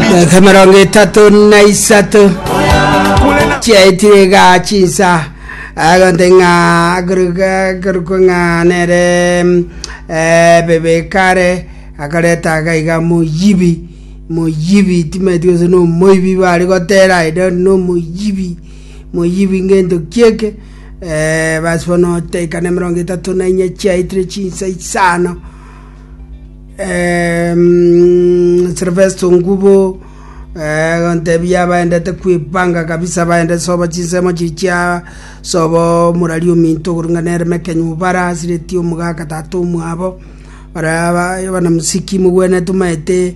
Dakika mirongo itatu na isato chiaitire iga chinsa agonte ng'a koruka- korukwa ng'a nere mm, eh, bebekare akareta agaiga moyibi moyibi timaeti gose no moibi bari gotera i don't know moyibi moyibi ngento kieke eh, basi bono taika na emerongo etato na inya chiaitire chinsa isano Eh, mm, Silvester Ngubo eh, gontebia baendete kwipanga kabisa baende sobo chinsemo chichia sobo murari ominto gorung'ana ere mekenyu bara asireti omogaka tata omwabo bara bana musiki mogwenetu maete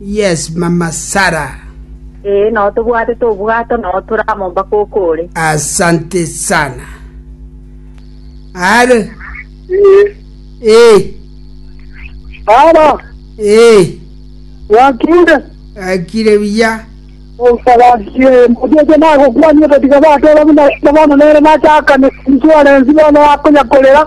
Yes, mama Sarah. Ee, nao tobwatete obwato, nao tore amo mpaka okore. Asante sana. Are. Ee, Ee, Sara, ee. wakinde. Akire buya. Osabasiye, motete nagokwani ototiga bateba buna bono nere nachakane insurance bono akonyakorera.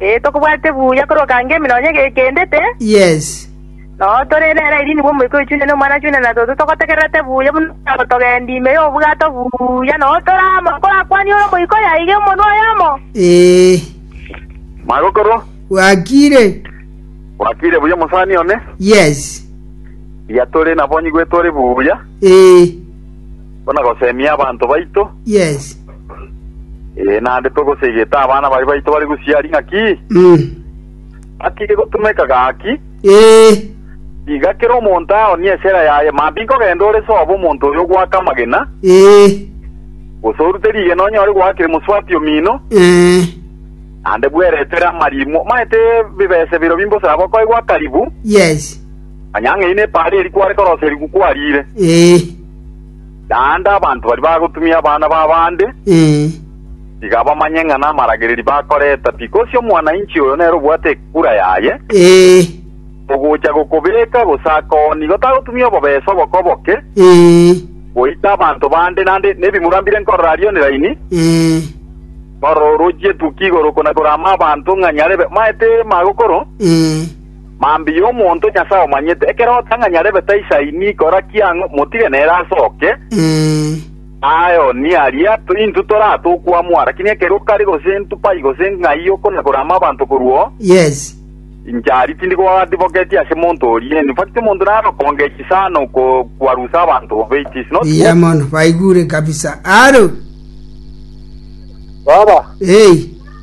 Ee, tokobwate buya korwa okange ime nonya gekendete. Yes. Noo tore nere airia nigo Omoika oyo chune n'Omwana chune na toto togotegererete buya buna okogendia ime y'obwato buya noo tore amo korakwanie ore Omoika oyo aige omonwa oyomo. Ee. Magokorwa, Gwakiire. gwakiire buya omosani one, Yes. riatore nabonyi gwetore buya. Ee. Buna gosemia abanto baito, Yes. ee, naende togosegete abana baria baito bare gosiaria ng'aki Mm. ng'aki gegotumeka gaki, Ee. tiga kera omonto aonie esera yaye, maambia nkogenda ore sobo omonto oyo ogoaka amagena, Ee. gose orute rigena onyore goaka emoswati omino, Eh. naende bweretere amarimo, maete bibese birobio mbosaba okoegwa akaribu, Yes. Onye ang'aini epaara eria kware korosa eriku kwariire, Ee, naende abanto baria bagotumia abana b'abande, ee, tiga bamanye ng'a namaragereria bakoreta pi. Gose omwana-inchi oyo nere obwate ekura yaye, ee, ogocha gokobeeka, gose akoo, nigo tagotumia obobesa oboke-oboke, ee, goita abanto bande, naende nebimura mbire nkorora aria oniraini, ee, nkorora orochie etukia igoro, konakorama abanto ng'a nyarebe maete magokoro, ee, Mambia omonto Nyasae omanyete, ekero otang'ani arebe taisaini kora kiang'o, motige nere asoke. Aye Onia aria, intwe toraa tokwamwa, lakini ekero okare gose intwe pai gose ng'ai okonagora amabanto korwa oo, inche aria tindi goadivoketie ase monto oria. In fact, omonto naro okongechi sana oko kwarusa abanto bobe, it is not good. Iya mono baigure kabisa aro Baba, hey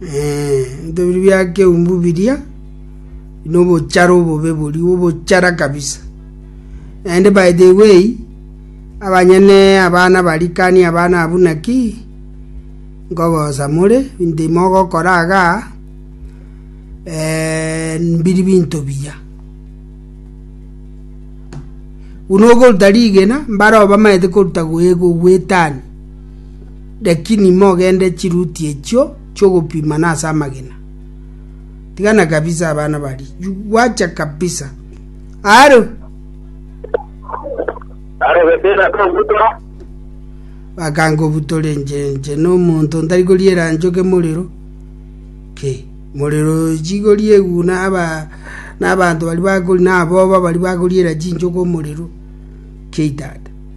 Ebinto biria bia keumbu biria nobochara obobe bori obochara kabisa naende by the way abanyene abana barikani abana abu naki nkogosa more binto mogokora aga eh, mbiri binto biya buna ogoruta rigena mbare obamaete koruta goegwa gwetani Lakini mogende chiruti echio chi'ogopima nase amagena. Tigana kabisa abana baria. Gwacha kabisa. Aro. Aro Beteli akobutora. Bakangobutora enche enche n'omonto ntari koriera nchoke morero. Ke. Morero chigori eguna aba n'abanto bari bakori n'aboba bari bakoriera chinchoke omorero. Ke tata.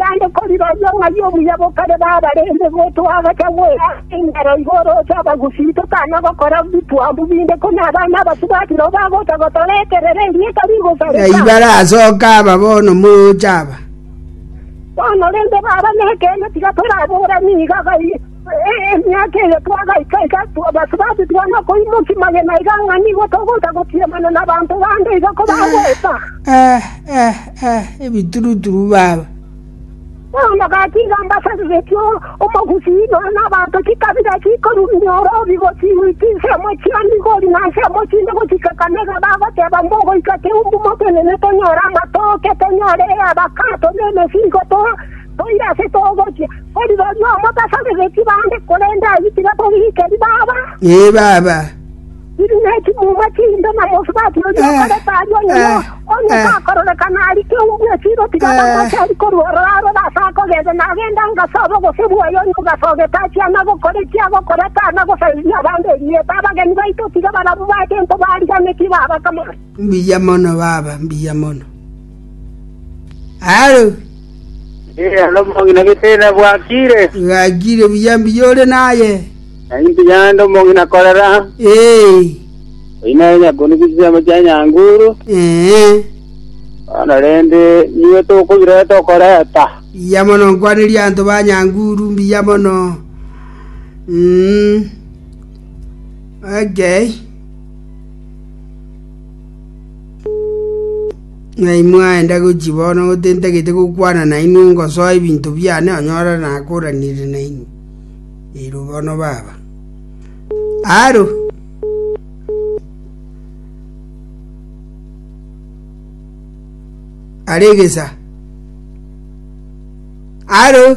“Yande koriroria ong'aini omuya bokare bw'abarenge, gotoa agacha gw'erangi enchero igoro ase abagusii, tokana gokora bitwambu binde, ko nabana abasubati nao bagocha gotora ekerero erieta rigosareka. Naiba arasoke aba bono mocha aba. Bono rende, baba nekeene, tiga toraboorani iga gai. Emiaka eye twagaika iga, abasubati tibana koimokia magena iga ng'a nigo togocha gotiamana nabanto bande iga ko bagoeta. Ebituruturu baba. Omogati iga mbasabiretie omogusii nonya nabanto chikabira chikorumia orobi gochia chinsemo chia Migori na nsemo chinde gochika Kanega bagoteba mbogoika keumbu motenene tonyore amatoke, tonyore eabakato, na emesigo, Toire ase togochia, ko rirorio omotasabereti bande, korende ayio tibatoriikeri, Baba. Ee, Baba. Riria ne chimuma chinde na mosubati oria okorete aria onyene, onye takororekana aria keu bw'esiro, tiga bamwachari korwa ororo arore ase akogenda, nagende angasobe obose bwaye, onye ogasogete achie ana gokora eki agokora, tana gosariria abande erieta. Abageni baito tiga barabwo bache into bariganetie, Baba, kamano. Mbuya mono, Baba, mbuya mono. Halo, Ee, alo omong'ina getena bwakire. gakire buya mbuya ore naye. Nainti yande omong'ina korera. Ee, Oyina nyakoni chisemo chia nyanguru. ee, Bono rende niwe tokobireta okoreta. buya mono nkwaneria anto ba nyanguru mbuya mono. Mm. Okay. Ng'ai mwaenda gochia bono gotentagete gokwana nainwe ngosoa ebinto biane onyora nakoranire nainwe? Erio bono baba aro aregesa aro